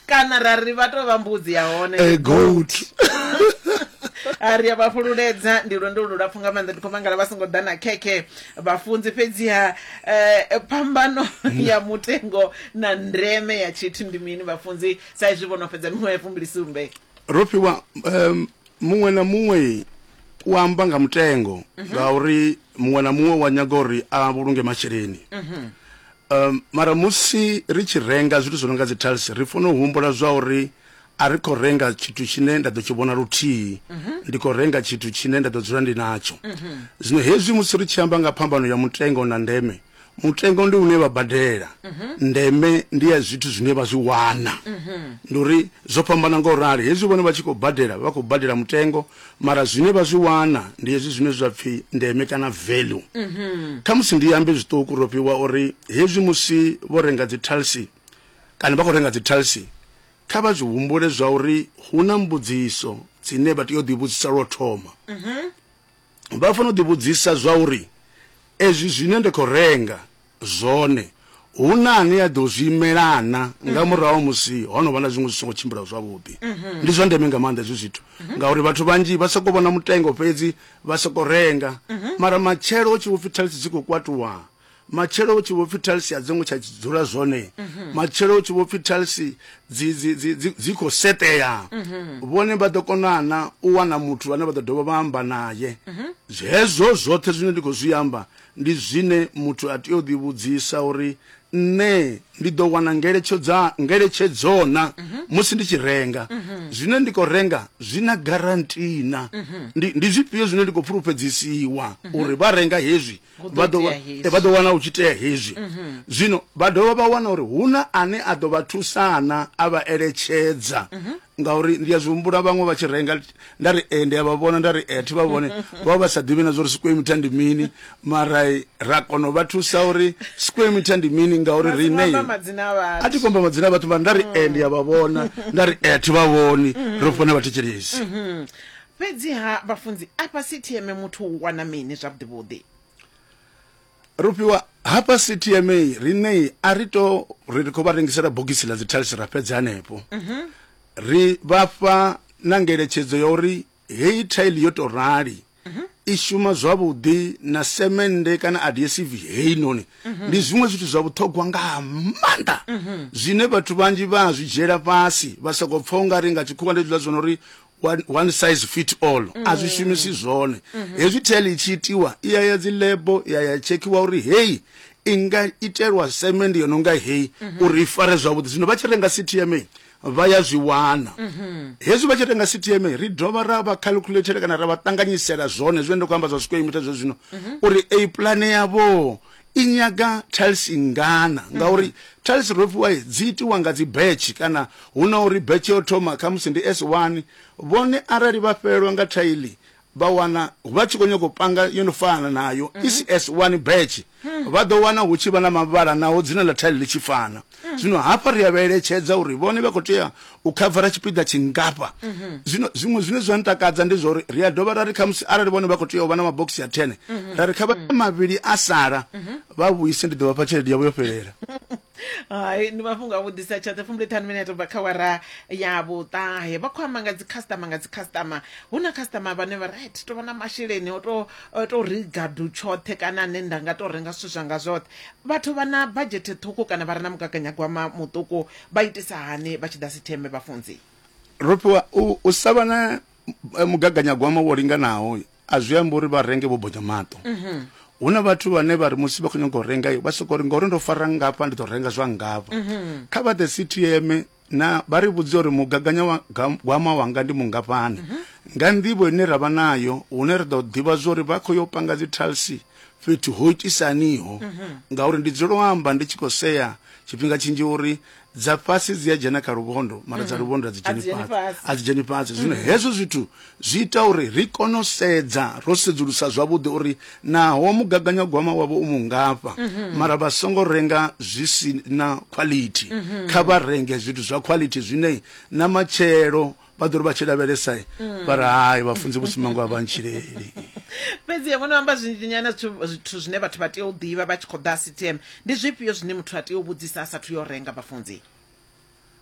kana ra ri vha tou vha mbudzi ya hone eh, goat a ri a vha fhululedza ndi lwendo lulapfhu nga maanḓa ndi khou mangala vha songo ḓa na khekhe vhafunzi fhedziha um phambano mm. ya mutengo na ndeme ya tshithu ndi mini vhafunzi sa izwi vho no fhedza miṅwe ya fumbili sumbe ro fhiwa um muṅwe na muṅwe u amba nga mutengo mhm. ngauri muṅwe na muṅwe wa nyaga uri a vhulunge masheleni mhm. Mara musi ri tshi renga zwithu zwi no nga dzi tiles, ri fanela u humbula zwa uri a ri khou renga tshithu tshine nda ḓo tshi vhona luthihi, ndi khou renga tshithu tshine nda ḓo dzula ndi natsho. Zwino hezwi musi ri tshi amba nga phambano ya mutengo na ndeme, mutengo ndi une vha badela, ndeme ndi ya zwithu zwine vha zwi wana. Ndi uri zwo fhambana nga u rali, hezwi vhone vha tshi khou badela, vha khou badela mutengo, Mara zwine vha zwi wana ndi hezwi zwine zwa pfi ndeme kana value. Kha musi ndi ambe zwiṱuku ro fhiwa uri hezwi musi vho renga dzi talsi kana vha kho renga dzi talsi kha vha zwi humbule zwa uri hu na mbudziso dzine vha tea u ḓi vhudzisa lwo thoma. Vha fanela u ḓi vhudzisa zwa uri ezwi zwine nda kho renga zwone, hu na ane a ḓo zwi imela na nga murahu ha musi ho no vha na zwiṅwe zwi songo tshimbila zwavhuḓi. Ndi zwa ndeme nga maanḓa hezwi zwithu ngauri vhathu vhanzhi vha sokou vhona mutengo fhedzi vha sokou renga mara matshelo hu tshi vho pfhi thaithi dzi khou kwatuwa, matshelo hu tshi vho pfhi thaithi a dzi ngo tsha dzula zwone, matshelo hu tshi vho pfhi thaithi dzi dzi dzi dzi dzi khou seṱea, vhone vha ḓo kona na u wana muthu vhane vha ḓo dovha vha amba naye. Hezwo zwoṱhe zwine ndi khou zwi amba Ndi zwine muthu a tea u ḓivhudzisa uri, Nṋe ndi ḓo wana ngeletshodza, ngeletshedzo-na musi ndi tshi renga? Zwine ndi khou renga zwi na garanti-na? Ndi, ndi zwifhio zwine ndi khou fhulufhedzisiwa uri vha renga hezwi Hu ḓo vha ḓo, itea hezwi. vha ḓo wana hu tshi tea hezwi? Zwino vha dovha vha wana uri hu na ane a ḓo vha thusa-na, a vha eletshedza. Ngauri ndi a zwi humbula vhaṅwe vha tshi renga nda ri e ndi a vha vhona nda ri e thi vha vhone vha vha sa ḓivhi na zwori square meter ndi mini mara ra kona u vha thusa uri square meter ndi mini ngauri riṋe a thi komba madzina a vhathu mara nda ri e ndi a vha vhona nda ri e thi vha vhoni mm-hmm. ro fona vhathetshelesi mm-hmm. fhedziha vhafunzi afha ctm muthu u wana mini zwavhuḓivhuḓi Rufhiwa, Hafha CTMA riṋei a ri to ri ri khou vha rengisela bogisi ḽa dzi tiles ra fhedza hanefho. Ri vha fha na ngeletshedzo ya uri heyi tile yo to rali i shuma zwavhuḓi na semende kana adhesive heinoni ndi zwiṅwe zwithu zwa vhuṱhogwa nga maanḓa zwine vhathu vhanzhi vha a zwi dzhiela fhasi vha sokou pfha u nga ri nga tshikhuwa ndi hezwiḽa zwo no ri one, one size fit all mm. a zwi shumisi zwone mm -hmm. hezwi tel i tshi itiwa i ya ya dzi lebo ya ya tshekhiwa uri heyi i nga itelwa semendi yo no nga heyi mm -hmm. uri i fare zwavhuḓi zwino vha tshi renga ctma vha ya zwi wana mhm. hezwi vha tshi renga ctma ri dovha ra vha calculator kana ra vha ṱanganyisela zwone zwine ndo khou amba zwa square meter zwe zwino mhm. uri a pulane yavho i nyaga tiles ngana ngauri tiles ro fhiwa i, dzi itiwa nga dzi batch kana hu na uri batch yo thoma khamusi ndi s1 vhone arali vha fhelelwa nga thaili vha wana vha tshi khou nyanga u panga yo no fana nayo i si s1 batch vha ḓo wana hu tshi vha na mavhala naho dzina ḽa thaili ḽi tshi fana zwino hafha ri a vha eletshedza uri vhone vha khou tea u khavara tshipiḓa tshingafha mhm. zwino zwiṅwe zwine zwa ntakadza ndi zwauri ri a dovha ra ri khamusi arali vhone vha khou tea u vha na mabokisi ya thene mhm. ra ri kha vha mhm. mavhili a sala vha vhuise ndi ḓo vha fha tshelede yavho yo fhelela hai ndi mafhungo a vhudisa tshoṱhe fumbule ṱhanu mine ya tobva kha wara ya vhuṱahe vha khou amba nga dzi customer nga dzi customer hu na customer vhane vha ri ti tovha na masheleni o to to riga du tshoṱhe kana ne nda nga to renga zwithu zwanga zwoṱhe Vhathu vha na badzhethe ṱhukhu kana vha re na mugaganyagwama muṱuku vha itisa hani vha tshi ḓa sitheme, Vhafunzi? Rofhiwa, U u sa vha na mugaganyagwama wo linganaho a zwi ambi uri vha renge vho bonya maṱo. Hu na vhathu vhane vha ri musi vha khou nyaga u renga vha sokou ri ngauri ndo fara nngafha ndi ḓo renga zwa nngafha. Kha vha ḓe sithieme na vha ri vhudze uri mugaganyagwama wanga ndi mungafhani mhm. nga nḓivho ine ra vha nayo hune ri ḓo ḓivha zwa uri vha khou yo panga dzi talsi fhethu ho itisaniho mhm. ngauri ndi dzulo u amba ndi tshi khou sea tshifhinga tshinzhi uri dza fhasi dzi a dzhena kha luvhondo mara dza mhm. luvhondo a dzi dzheni fhasi a dzi dzheni fhasi zwino hezwo zwithu Zwi ita uri ri kone u sedza ro sedzulusa zwavhuḓi uri naho mugaganyagwama wavho u mungafha mara vha songo renga zwi si na khwalithi. Kha vha renge zwithu zwa khwalithi zwine na matshelo vha ḓo ri vha tshi lavhelesa vha ri, Hai, vhafunzi vho sumba ngoho a vha ntshileli. Fhedzi-ha, vho no amba zwinzhinyana zwithu zwithu zwine vhathu vha tea u ḓivha vha tshi khou ḓa Sitem. Ndi zwifhio zwine muthu a tea u vhudzisa a sathu yo renga, vhafunzi?